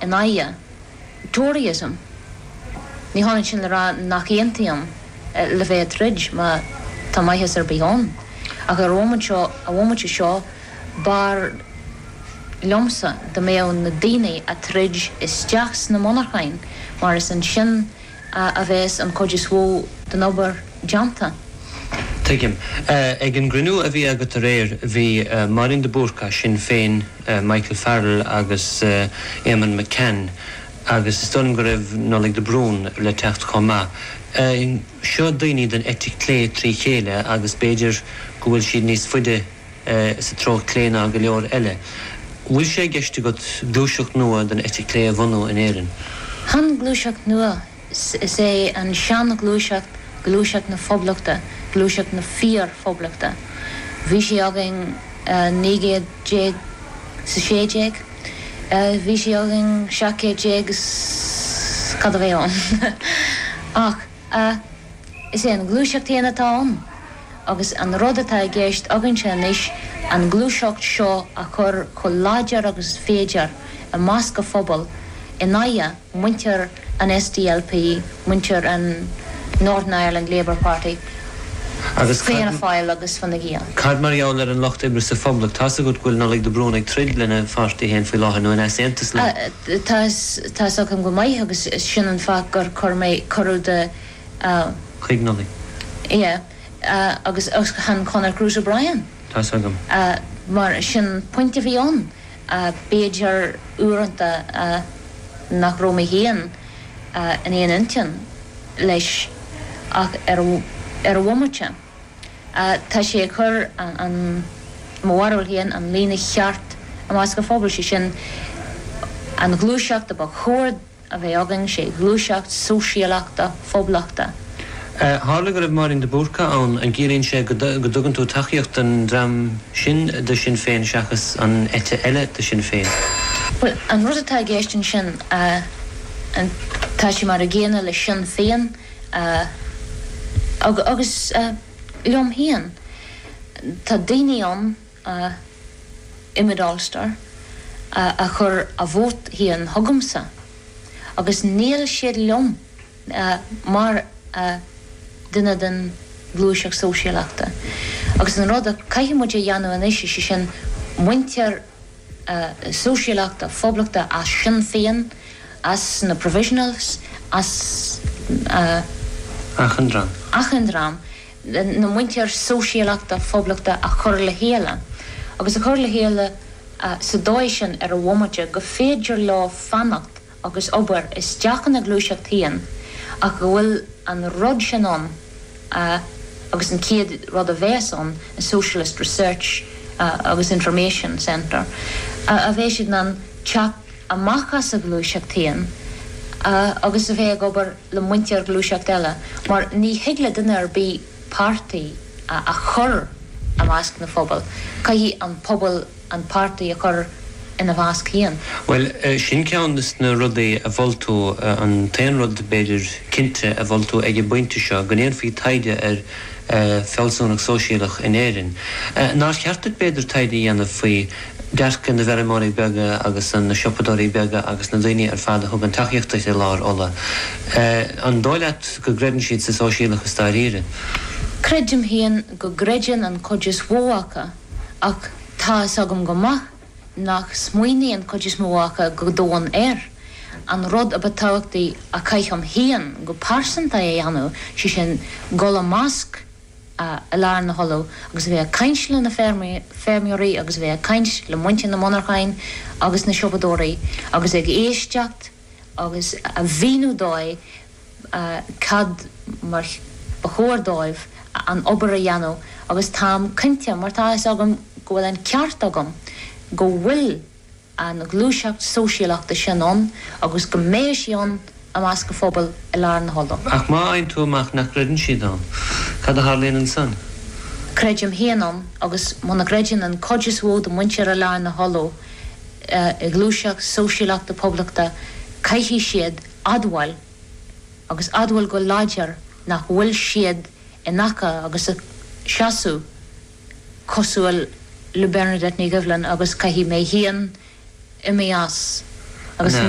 in aghaidh Toryism. Ní hionann sin le rá nach aontaím le bheith ag troid, má tá maitheas ar bith ann, ach ar an bhomaite seo b'fhearr liomsa dá mbeadh na daoine ag troid isteach sna monarchain mar is ansin, a bheas an chuid is mhó den obair déanta. Tuigim. Ag an gcruinniú a bhí agat aréir, bhí Máirín de Búrca, Sinn Féin, Michael Farrell agus Eamonn McCann agus is dóigh liom go raibh Nollaig de Brún le teacht chomh maith. Seo daoine den eite clé trí chéile agus b'fhéidir go bhfuil siad níos faide, sa treo clé ná go leor eile. An bhfuil sé i gceist agat gluaiseacht nua den eite chlé a bhunú in Éirinn? Chan gluaiseacht nua, is é an seanghluaiseacht gluaiseacht na Phoblachta, gluaiseacht na fíor-Phoblachta. Bhí sí againn i 1916, bhí sí againn 1700 is cad a bhí ann. Ach. Ach is é an gluaiseacht féin atá ann, agus an rud atá i gceist againnse anois an gluaiseacht seo a chur chomh láidir agus is féidir i measc an phobail in aghaidh muintir an SDLP, muintir an Northern Ireland Labour Party, Agus cad. Fianna Fáil agus Fine Gael. Cad mar gheall ar an Lucht Oibre sa Phoblacht? Tá's agat go bhfuil Nollaig de Brún ag troid lena pháirtí féin faoi láthair, nó in easaontas leo. Tá Tá's agam go maith, agus sin an fáth gur chuir mé cuireadh do a. Chuig Nollaig. Sea. Agus chan Conor Cruise O'Brien. Tá's agam. Mar sin an pointe a bhí ann. B'fhéidir uaireanta nach raibh mé féin in aon intinn leis ach ar an bhomaite. Tá sé ag cur, i mo bharúil féin, an líne cheart i measc an phobail, sé sin, an ghluaiseacht a ba chóir a bheith againn, sé ghluaiseacht sóisialachta, phoblachta. Tharla go raibh Máirín de Búrca ann, an gciallaíonn sé go dtugann tú tacaíocht don dream sin de Sinn Féin seachas an eite eile de Sinn Féin? Bhuel, an rud atá i gceist ansin, tá sé mar an gcéanna le Sinn Féin, Agus, agus liom féin, tá daoine ann, i Mid Ulster, a chuir a vóta féin chugamsa, agus níl siad liom mar duine den ghluaiseacht sóisialachta. Agus an rud a caithfidh muid a dhéanamh anois, is é sin, muintir. sóisialachta poblachta as Sinn Féin, as na Provisionals, as. achan dream. achan dream den mhuintir sóisialachta poblachta a chur le chéile, agus a chur le chéile sa dóigh sin ar a bhomaite go féidir leo fanacht agus obair isteach ina ghluaiseacht féin ach go bhfuil an rud sin ann agus an chéad rud a bheas ann ná Socialist Research agus Information Centre a bheidh siad in ann teacht amach as a ghluaiseacht féin agus a bheith ag obair le muintir gluaiseacht eile mar ní thig le duine ar bith páirtí a chur i measc na phobail caithfidh an pobal an páirtí a chur ina measc féin. Bhuel, sin ceann de na rudaí a mhol tú, an t-aon rud, b'fhéidir, cinnte a mhol tú ag an bpointe seo, go ndéanfaí taighde ar fealsúnacht sóisialach in Éirinn. Nár cheart duit, b'fhéidir, taighde a dhéanamh faoi dearcadh na bhfeirmeoirí beaga agus na siopadóirí beaga agus na daoine ar fad a thugann tacaíocht duit i Lár Uladh. An dóigh leat go gcreideann siad sa sóisialachas dáiríre? Creidim féin go gcreideann an chuid is mhó acu. Ach tá fhios agam go maith nach smaoiníonn an chuid is mó acu go domhain air. An rud a ba tábhachtaí a chaithfinn féin go pearsanta a dhéanamh, sé sin dhul i measc Lár Uladh agus a bheith ag caint le na feirmeoirí agus a bheith ag caint le muintir na monarchain agus na siopadóirí agus ag éisteacht agus a mhíniú dóibh cad mar ba chóir dóibh an obair a dhéanamh agus táim cinnte, mar tá fhios agam go bhfuil an ceart agam, go bhfuil an ghluaiseacht sóisialachta sin ann agus go mbeidh sí ann i measc an phobail i Lár Uladh. Ach má fhaigheann tú amach nach gcreideann siad ann, cad a tharlaíonn ansan? Creidim féin ann, agus muna gcreideann an chuid is mhó de mhuintir Lár Uladh, i ngluaiseacht sóisialachta poblachta, caithfidh siad admháil, agus admháil go láidir, nach bhfuil siad in aice agus a seasamh cosúil le Bernadette Ní Dhoibhlin agus caithfidh mé féin imeacht as agus.